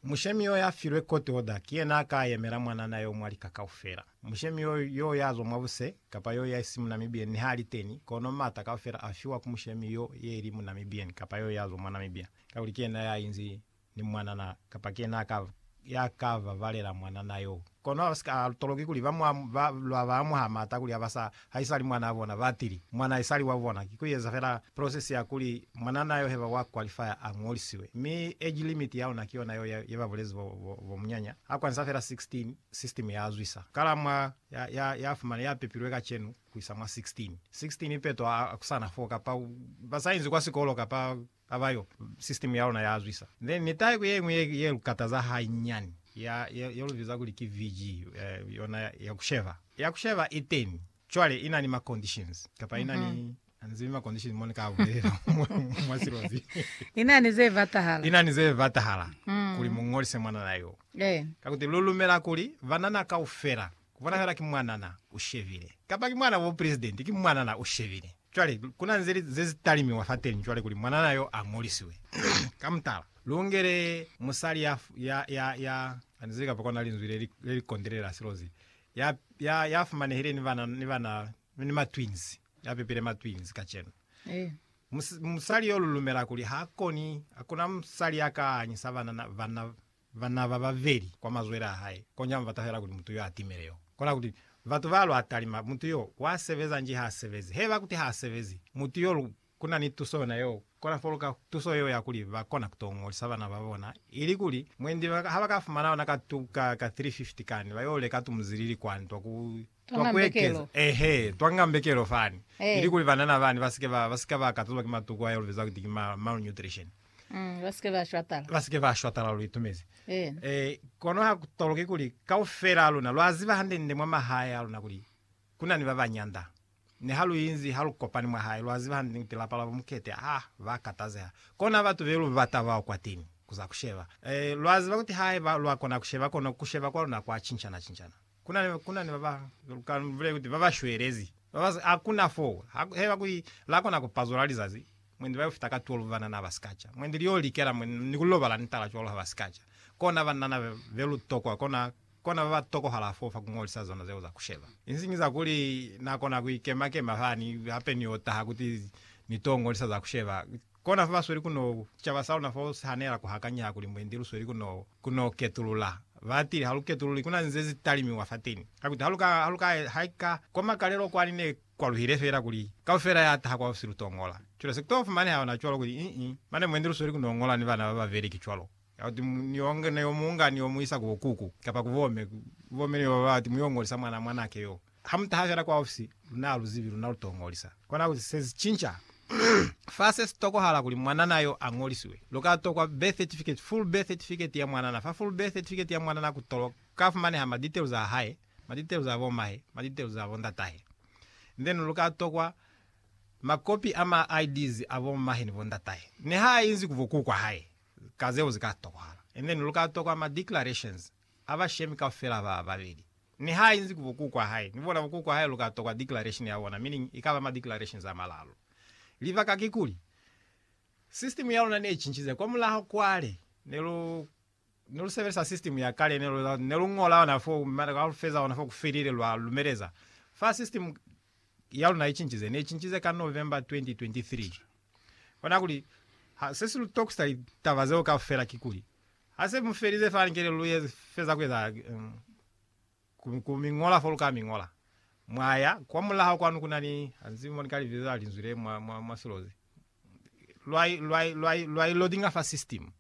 Mushemi yo ya filwe court order ki yena a ka yemela mwanana yo mwa lika kaufela. Mushemi yo, yo ya zwa mwa buse, kapa yo ya i si mu Namibian ni ha li teni, kono m'ata kaufela a fiwa ku mushemi yo ye li mu Namibian kapa yo ya zwa mwa Namibia, kakuli ki yena ya inzi ni mwanana kapa ki yena a ka, ya ka babalela mwanana yo. Kono a si ka toloki kuli ba lwa ba amuha mata kuli aba sa haisali mwanaa bona, ba tili, Mwana haisali wa bona. Ki ku eza fela process ya kuli mwananaa yo heba wa qualifier a ñolisiwe. Mi age limit ya ona ki yona yo ye ba bulezi bo, bo, bo munyanya. A kwanisa fela 16, system ya zwisa. Kala mwa ya, ya, ya fumana, ya pepilwe kacenu kuisa mwa 16. 16 ipeto a, a ku sana foo, kapa ba sa inzi kwa sikolo, kapa Ka ba yo, sisitemu ya luna ya zwisa. Then ni taeko ye ñwi ye lu kataza hanyinyani, ya, ye, ye lu biza kuli ki VG, eh, yona ya, ya ku sheva. Ya ku sheva i teni. Cwale i na ni ma conditions, kapa i na ni, ani zibi ma conditions mo ni ka a bulelela mwa, mwa silozi. I na ni ze batahala. I na ni ze batahala kuli mu ñolise mwanana yo. Ka kuti lu lumela kuli banana kaufela Kubonahala ki mwanana ushebile. Kapa ki mwana wa bupresidenti, ki mwanana ushebile. Cwale, kuna nze li, ze zitalimiwa fateñi cwale kuli mwanana yo a ngolisiwe. Ka mutala, lungele musali ya, ya, ya, ya, anizili kapa kona linzwi le li, le li kondelela silo ze, ya, ya, ya fumanehile ni bana, ni bana, ni matwins, ya pepile matwins kacenu. Mus, musali yo lu lumela kuli ha koni, hakuna musali ya ka anyisa banana, banna, Bana bababeli kwa mazwele a hae, koña mi batahela kuli mutu yo atimele yo. Kona kuti, batu ba lwa talima, mutu yo, wa sebeza nji ha asebezi? Heba kuti ha asebezi, mutu yo lu, kuna ni tuso yona yo, kona foluka tuso yeo ya kuli ba kona kuto ngolisa bana ba bona, ili kuli, mwendi, ha ba ka fumana yona ka tu, ka, ka 350 kani, ba yo leka tumuzilili kwa ntwa ku Twa kuekeza, eehe, twa nga mbekelo fani, ilikuli banana bani ba si ke ba, ba si ka ba katazwa ki matuku a yo lu biza kuti ki ma, malnutrition. Mm, ba si ke ba shwatala. Ba si ke ba shwatala, lu itumezi. Eena. E, kono ha ku toloki kuli kaufela a luna lwa ziba hande-nde mwa mahae a luna kuli ku na ni ba ba nyanda. Niha lu inzi, ha lu kopani mwa hae, lwa ziba hande-nde kuti lapa la bo Mukete, ah, ba katazeha. Kona batu be lu bata bao kwateni, ku za ku sheba. E, lwa ziba kuti haiba lwa kona ku sheba, kono ku sheba kwa luna kwa cincana-cincana. Kuna ni baba ka nivule kuti baba shwelezi babazi hakuna fo heba kuli la kona ku pazola lizazi mwendi bayo fita ka 12 banana ba sikaca mwendi liyo likela mwe ni ku lobala ni tala cwalo haba sikaca kona banana be lu tokwa kona kona baba tokohala fo fa ku ngolisa zona zeo za ku sheba insiñi za kuli na kona ku ikema kema fani hape ni yo taha kuti ni to ngolisa za ku sheba Kona fa ba sweli ku no ku sicaba sa luna fa u sihanela ku hakanyeha kuli mwendi lu sweli ku no ku no ketulula. Ba tili, Ha lu ketululi, ku na ni ze si talimiwa fateni. Ha kuti, Ha lu ka, ha lu ka, haika kwa makalelo kwani ne kwa luhile fela kuli kaufela ya taha kwa ofisi lu to ngola. Cwale se ku to fumaneha ona cwalo kuli, Ii, mane mwendi lu sweli ku no ngola ni bana ba babeli, ki cwalo. Ya kuti, Mu, ni yo, ni yo mu nga ni yo mu isa ku bo kuku, kapa ku bo me, ku bo me ni yo ba ba ti, mu yo ngolisa mwana, mwanake yoo. Ha mu taha fela kwaufsi, luna ha lu zibi luna lu to ngolisa. Kona kuli se si cinca. Fa se si tokohala kuli mwanana yo a ngolisiwe. Lu ka tokwa birth certificate, full birth certificate ya mwanana. Fa full birth certificate ya mwanana ku to ka fumaneha ma details a hae, ma details a bo mahe, ma details a bo ndatahe. Then lu ka tokwa ma copy a ma IDs a bo mahe ni bo ndatahe, niha a inzi ku bo kuku wa hae, ka zeo zi ka tokohala. And then lu ka tokwa ma declarations. Ha ba shemi kaufela ba babeli. Niha inzi ku bokukwa hae, ni bona bokukwa hae lu ka tokwa declaration ya bona, meaning i ka ba ma declarations a malalu. Libaka kikuli, system ya luna ne cincize. Kwa mulaho kwale, ne lu, ne lu sebelisa system ya kale, ne lu, ne lu ñola yona fo, mara ha lu feza ona fo ku felile, lwa lumeleza. Fa system ya luna i cincize, ne i cincize ka November 2023. Kona kuli, ha, se si lu tokusa litaba zeo kaufela kikuli, Ha se mu felize fa likele lu ye feza ku eza ku mi ñola fo lu ka mi ñola. Mwa ya kwa mulaho kwanu ku na ni hansi mo ni ka li biza linzwi le mwa, mwa, mwa silozi. Lwa, lwa, lwa, lwa i loadinga fa system.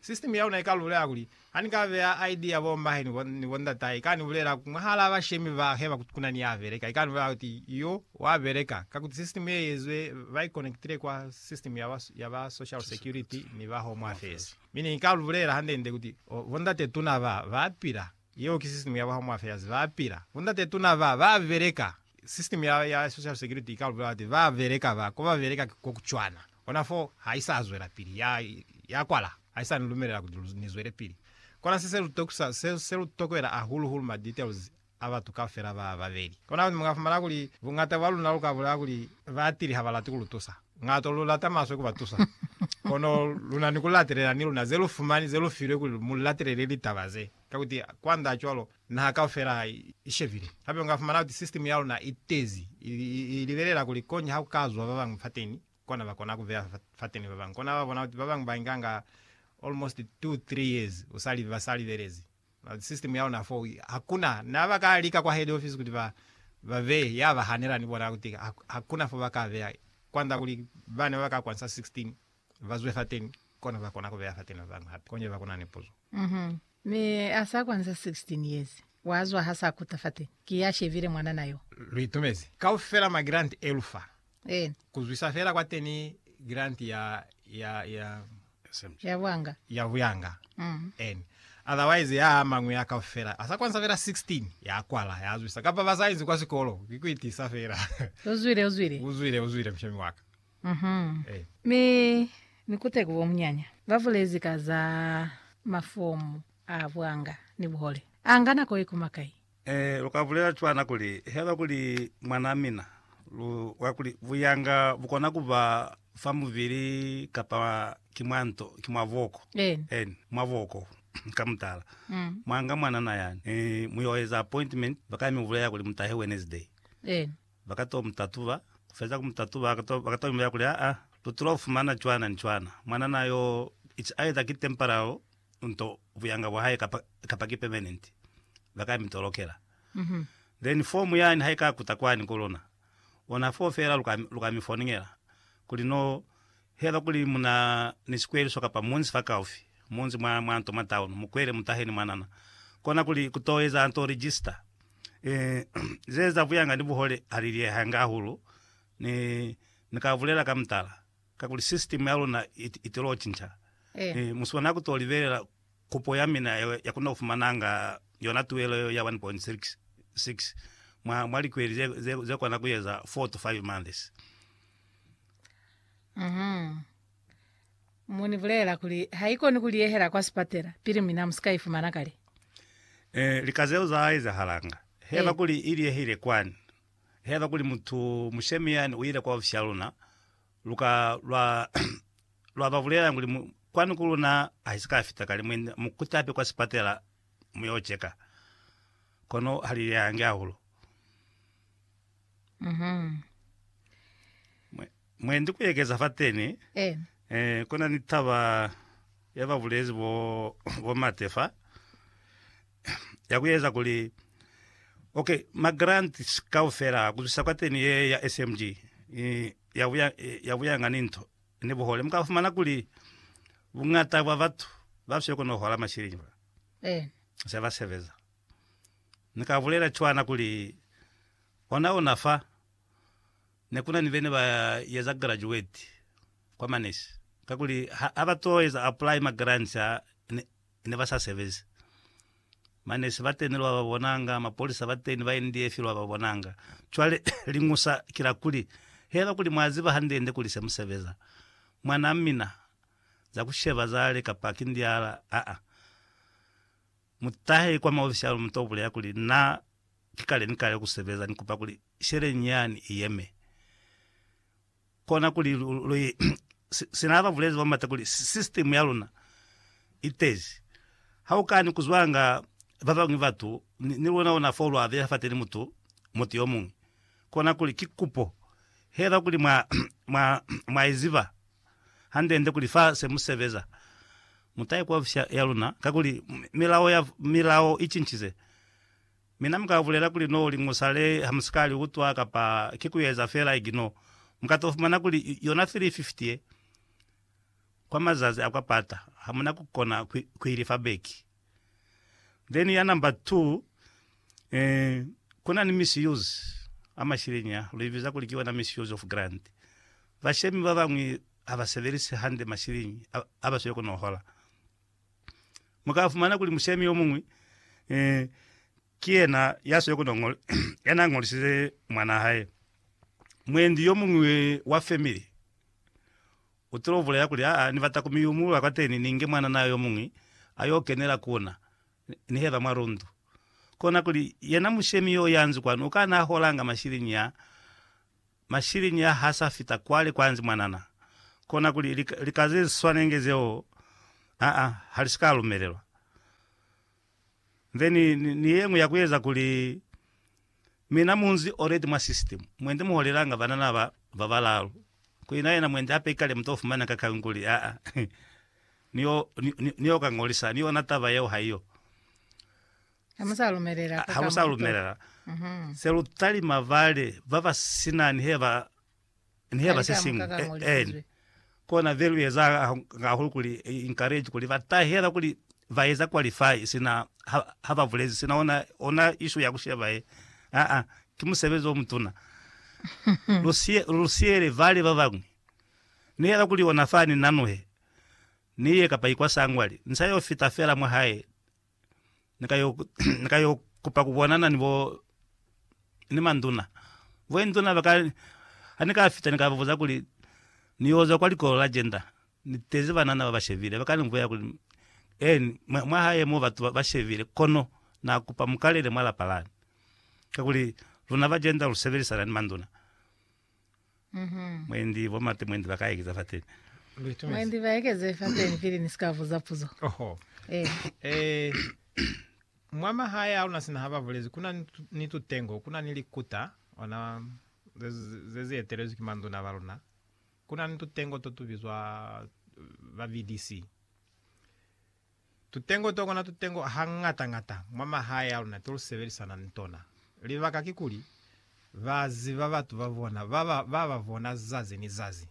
System ya luna i ka lu bulela kuli, Ha ni ka beya ID ya bo mmahe ni bo, ni bo ndatai, i ka ni bulela mwahalaa bashemi ba heba kuti ku na ni ya beleka. I ka ni bulela kuti, Yo, wa beleka. Kakuti system ye i ezwe, ba i connectile kwa system ya ba, ya ba social security ni ba home affairs. Mi ne ni ka lu bulela hande-nde kuti, Oh, bondatetuna ba, ba pila. Yeo ki sisitimu ya Home Affairs. Ba pila. Bondatetuna ba, ba beleka. Sisitimu ya, ya Social Security i ka lu bulela kuti, Ba beleka ba, ko ba beleka ki ko ku cwana. Kona foo, ha i sa zwelapili. Ya, ya kwala. Ha i sa ni lumelela kuti lu, ni zwele pili. Kona se, se lu tokusa, se, se lu tokwela hahulu-hulu ma details a batu kaufela ba babeli. Kona luli muka fumana kuli bungata bwa luna luka bulela kuli batili ha ba lati ku lu tusa. Ngato lu lata maswe ku ba tusa. Kono luna ni ku latelela ni luna ze lu fumani ze lu filwe kuli mu latelele litaba ze. Ka kuti, kwand'a cwalo, naha kaufela ha i shebile. Hape muka fumana kuti sistemu ya luna i tezi, i libelela kuli koñi ha ku ka zwa ba bañwi fateni, kona ba kona ku beya fateni ba bañwi. Kona ba bona kuti ba bañwi ba inganga almost two, three years u sa ba sa libelezi. System ya luna foo hakuna na ba ka lika kwa head office kuti ba ba beye ya ba hanela ni bona kuti hakuna fo ba ka beya kwanda kuli bana ba ka kwansa 16 ba zwe fateni kona ba kona ku beya fateni ba bañwi hape konje ba kuna ni puzo. Mhm. Mi a sa kwansa 16 years wa zwa ha sa kuta fateni ki ya shebile mwanana yo. Lu itumezi kaufela ma grant e lu fa Eena. Kuzwisa fela kwateni grant ya ya ya Ya bwanga. ya buyanga. Mm. Eena. Otherwise ya amang'wi a kaufela asa kwanisa fela 16 ya kwala ya zwisa kapa ba sa inzi kwa sikolo ki ku itiisa fela. Uzwile uzwile. Uzwile uzwile mushomi waka. Mhm. Eh. Mi ni kute ku bomunyanya ba bulezi ka za mafomu a bwanga ni buhole. A nga nako ye kuma kai? Ee, lu ka bulela cwana kuli, Haiba kuli mwanaa mina, lu kwa kuli buyanga bu kona ku ba fa mubili kapa ki mwa nto, ki mwa boko. Eeni. Eeni, mwa boko. Ka mutala, Mm. mwa nga mwanana yani, mi mu yo eza appointment, ba ka mi bulela kuli mu tahe Wednesday. Eeni. Ba ka to mu tatuba. Ku feza ku mu tatuba, ba ka to imbela kuli, Aa, lu tula ku fumana cwana ni cwana. Mwanana yo, ico a eza ki temporary unto buyanga bwa hae kapa, kapa ki permanent, ba ka mi tolokela. Then form yani ha i ka kuta kwani ku luna, ona foo fela lu ka, lu ka mi fonela. Kuli no, he ba kuli mu na ni sikweliso kapa munzi fakaufi, munzi mwa, mwa nto mwa town, mu kwele, mu tahe ni mwanana. Kona kuli ku to eza nto register, Ee, ze eza buyanga ni buhole ha li liyehanga hahulu. Ni, ni ka bulela ka mutala, kakuli sisitimu ya luna i, i tilo cinca. Ee. Ee, mu si kona ku to libelela kupo ya mina yeo ya ku no fumananga yona tuelo yeo ya 1.66 mwa, mwa likweli ze, ze, ze kona ku eza 4 to 5 months. Mhm. Mu ni bulelela kuli haikoni ku liyehela kwa sipatela pili mina mu si ka ifumana kale. Eh, lika zeo za ezahalanga. Haiba Eh. kuli i liyehile kwani, haiba kuli mutu mushemi yani uile kwa ofisha luna, lu ka lwa lwa ba bulelelani kuli mu, kwani ku luna ha si ka fita kale, mu enda, mu kutape kwa sipatela mu yo cheka. Kono ha li liyehangi hahulu. Mhm. Mwe- Mwendi kuekeza fateni, Eh. eh, kuna ni taba yababulezi bo, bo Mate fa, ya kueza kuli, ok, ma grants kaufela kuzwisa kwateni ye ya SMG, eh, ya buya, eh, ya buyanga ni nto, ni buhole. Muka fumana kuli, bungata bwa batu, ba siyo kono hola mashilingi fa, Eh. se ba sebeza. Ni ka bulela cwana kuli, Ona ona fa, ne ku na ni bene ba eza graduate kwa manese, kakuli ha, ha ba to eza apply ma grants a, ne, ne ba sa sebezi. Manese bateni lwa ba bonanga, mapolisa bateni, ba NDF lwa ba bonanga. Cwale, liñusa ki la kuli, heba kuli mwa ziba hande-nde kuli se mu sebeza, mwanaa mina, za ku sheba zale, kapa ki ndiala, aa. Mutahe kwa maofisi a Lumuta ubulela kuli, Na ki kale ni kale kusebeza, ni kupa kuli sheleñi yani iyeme. Kona kuli lu, lu i, sina aba bulezi ba mata kuli system ya luna itezi. Ha ukani kuzwanga babañwi batu, ni, ni luna ona fo lu abeha fateni mutu, mutu yomuñwi. Kona kuli ki kupo hela kuli mwa, mwa, mwa iziba. hande-nde kuli fa se mu sebeza, mu ta ikwafisa ya luna, kakuli milao ya milao i cincize. Mina mu ka bulela kuli no li musale ha mu si ka li utwa kapa ki ku eza fela igno. Mu ka to fumana kuli yona 350 ye, kwa mazazi a kwa pata, ha mu na ku kona ku i lifa beki. Then ya number two, eh, kuna ni misuse a mashileni a, lu ibiza kuli ki yona misuse of grant. Bashemi ba bañwi ha ba sebelise hande mashileni a, a ba swile ku no hola. Mu ka fumana kuli mushemi yo muñwi, eh, ki yena ya swile ku no ngol, yena a ngolisize mwanaa hae. Mwendi yo muñwi wa family Utile ubulela kuli, Aa, nibata kumiyumulula kwateni ninge mwananaa yomuñwi ayo kenela kuna, niheba mwa lundu. Kona kuli, yena mushemi yo yanzwi kwanu ukana aholanga mashiliñi a mashiliñi a hasa fita kwale kwanzi mwanana. Kona kuli, lika, lika zeswanenge zeo, aa, halisika lumelelwa. Nze ni, ni, ni yeñwi ya kueza kuli mina munzi oleti mwa system. Mwendi muholelanga banana ba, ba balalu. Ku ina yena mwendi hape ikale muto fumana ka kali kuli, Haa, ni yo, ni, ni, ni yo ka ngolisa, ni yona taba yeo haiyo. Ha mu sa lumelela Ha mu sa lumelela. Se lu talima bale baba sina ni heba Ni yeba se siñwi. Aen. Kona ve lu eza hahulu kuli encourage kuli ba tahela kuli ba eza qualify sina ha, ha ba bulezi sina ona, ona issue ya ku sheba ye. Aa, ki musebezi o mutuna. lu sie, lu siele vale ba bañwi. Ni yeba kuli ona fani nanuhe, ni ye kapa ikwa sangwali, ni sa yo fita fela mwa hae, ni ka yo ni ka yo kupa ku bonana ni bo ni manduna. Bo induna ba ka ha ni ka fita ni ka ba buza kuli ni yo zwa kwa likolo la gender ni tezi banana ba ba shebile. Ba ka ni vulela kuli eeni mwa hae mo batu ba shebile kono na kupa mu kalele mwa lapa lani kakuli luna ba gender lu sebelisana ni manduna. Mhm. Mwendi bo mate mwendi baka ekeza fateni. Luitumezi. Mwendi ba ekeze fateni pili ni sika buza puzo. Oho. Eh. Eh, mwa mahae a luna sina ha ba bulezi kuna ni, ni tutengo, kuna ni likuta, ona ze, ze zi etelezwi ki manduna ba luna. Kuna ni tutengo to tu bizwa ba VDC. Tutengo to kona tutengo hañata-ñata mwa mahae a luna to lu sebelisana ni tona. Libaka kikuli, ba ziba batu ba bona ba ba ba bona zazi ni zazi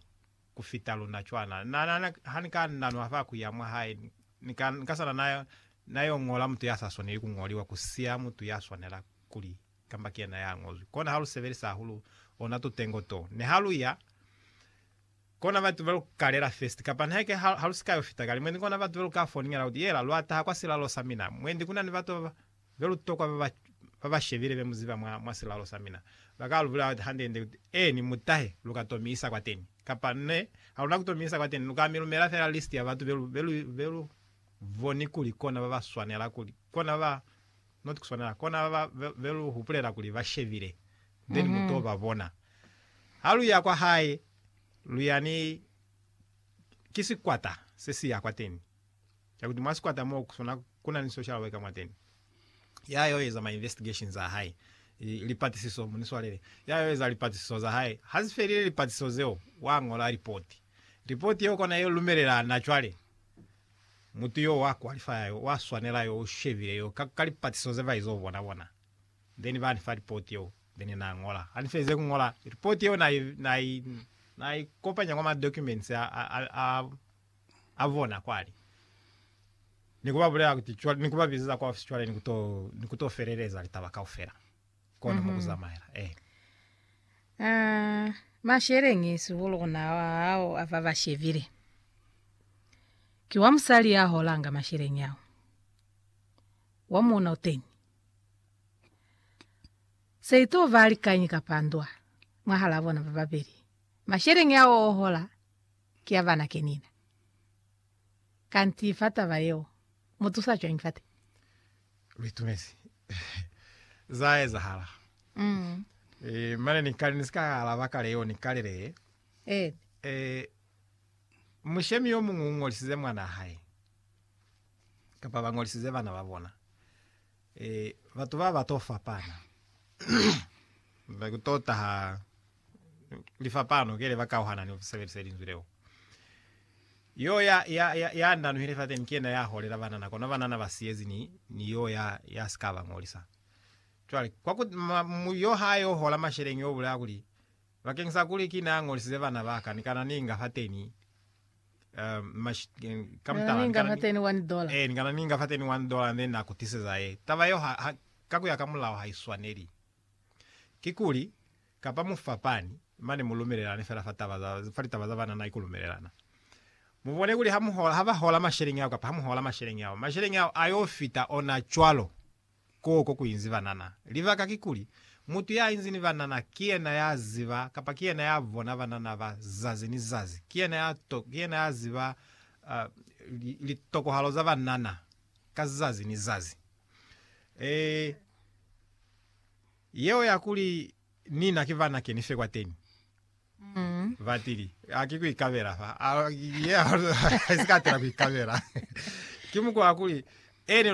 ku fita luna cwana. Na, na, na, ha ni ka na nwa fa ku ya mwa hae, ni ka, ni ka sala na, na yo ñola mutu ya sa swaneli ku ñoliwa, ku siya mutu ya swanela kuli kamba ki yena ya ñozwi. Kona ha lu sebelisa hahulu ona tutengo to. Ni ha lu ya. Kona batu ba lu kalela festi, kapa nihake ha, ha lu si ka yo fita kale. Mwendi kona batu ba lu ka foningela kuti, Yela, lwa taha kwa silalo sa mina. Mwendi kuna ni batu ba ba, be lu tokwa ba ba, ba ba shebile be mu ziba mwa, mwa silalo sa mina. Ba ka lu bulela hande-nde kuti, Eeni, mu tahe, lu ka to mi isa kwateni. Kapa, Ne, ha luna ku to mi isa kwateni. Lu ka mi lumela fela listi ya batu be lu, be lu, be lu boni kuli kona ba ba swanela, kuli kona ba ba, Not kuswanela kona ba be lu hupulela kuli ba shebile then mu to ba bona ha lu ya kwa hae lu ya ni ki sikwata se si ya kwateni kya kuti mwa sikwata mo kuswana kuna ni social worker mwateni ya yo eza ma investigations a hae lipatisiso mu ni swalele ya yo eza lipatisiso za hae ha zi felile lipatisiso zeo wa ngola report report yeo kona ye lumelela na cwale Mutu yo wa qualifya yo wa swanela yo u shebile yo ka, ka lipatiso ze ba izo bona bona. Then ba ni fa report yeo, then na ñola. Ha ni felize ku ñola, report yeo na i, na i, na i kopanya kwa ma documents a, a, a, a, a bona kwani. Ni ku ba bulela kuti, cwale, ni ku ba bizeza kwa ofisi cwale ni ku to, ni ku to feleleza litaba kaufela. kona mm -hmm. mukuzamaela eh. Uh, ah, mashelenge sihulu kuna hao ava vashevile ki wa musali ya holanga mashelenge ao wa muona uteni se ito va likanyi kapa ndwa mwahala bona va babeli mashelenge ao ohola ki ya vana kenina kanti fatava yeo Mu tusa cwañi fate? Lu itumezi za ezahala. Eh, mane ni kale ni si ka alaba kale yo, ni kale le, Eh. eh, mushemi yo muñwi u ñolisize mwanaa hae, kapa ba ñolisize bana ba bona. Eh, batu ba ba to fapana. Ba ku to taha lifapano kele ba kauhana ni ku sebelisa linzwi leo. Yo ya, ya, ya, ya ndanuhile fateni ki yena ya holela banana, kono banana ba siyezi ni, ni yo ya, ya si ka ba ngolisa. Cwale, kwa ku, ma, mu, yo ha yo hola masheleñi yo bulela kuli, Bakeng sa kuli ki na ngolisize bana ba ka, ni kana ni inga fateni, um, mash, eh, ka mutala, ni kana ni, eh, ni kana ni inga fateni one dollar, then na ku tiseza ye. Taba yeo ha, ha, ka ku ya ka mulao ha i swaneli. Kikuli, kapa mu fapani, mane mu lumelelane fela fa taba za, fa litaba za banana i ku lumelelana. Mu bone kuli ha mu hola, ha ba hola masheleñi ao, kapa ha mu hola masheleñi ao, masheleñi ao a yo fita ona cwalo. Koo ko ku inzi banana. Libaka kikuli, mutu ya inzi ni banana ki yena ya ziba, kapa ki yena ya bona banana ba zazi ni zazi. Ki yena ya to, ki yena ya ziba, uh, li, litokohalo za banana ka zazi ni zazi. Ee, yeo ya kuli ni na ki vana keni fe kwateni. Mm. Batili aki kuikabela fa a ye a si katela kuikabela ki mukwa kuli ene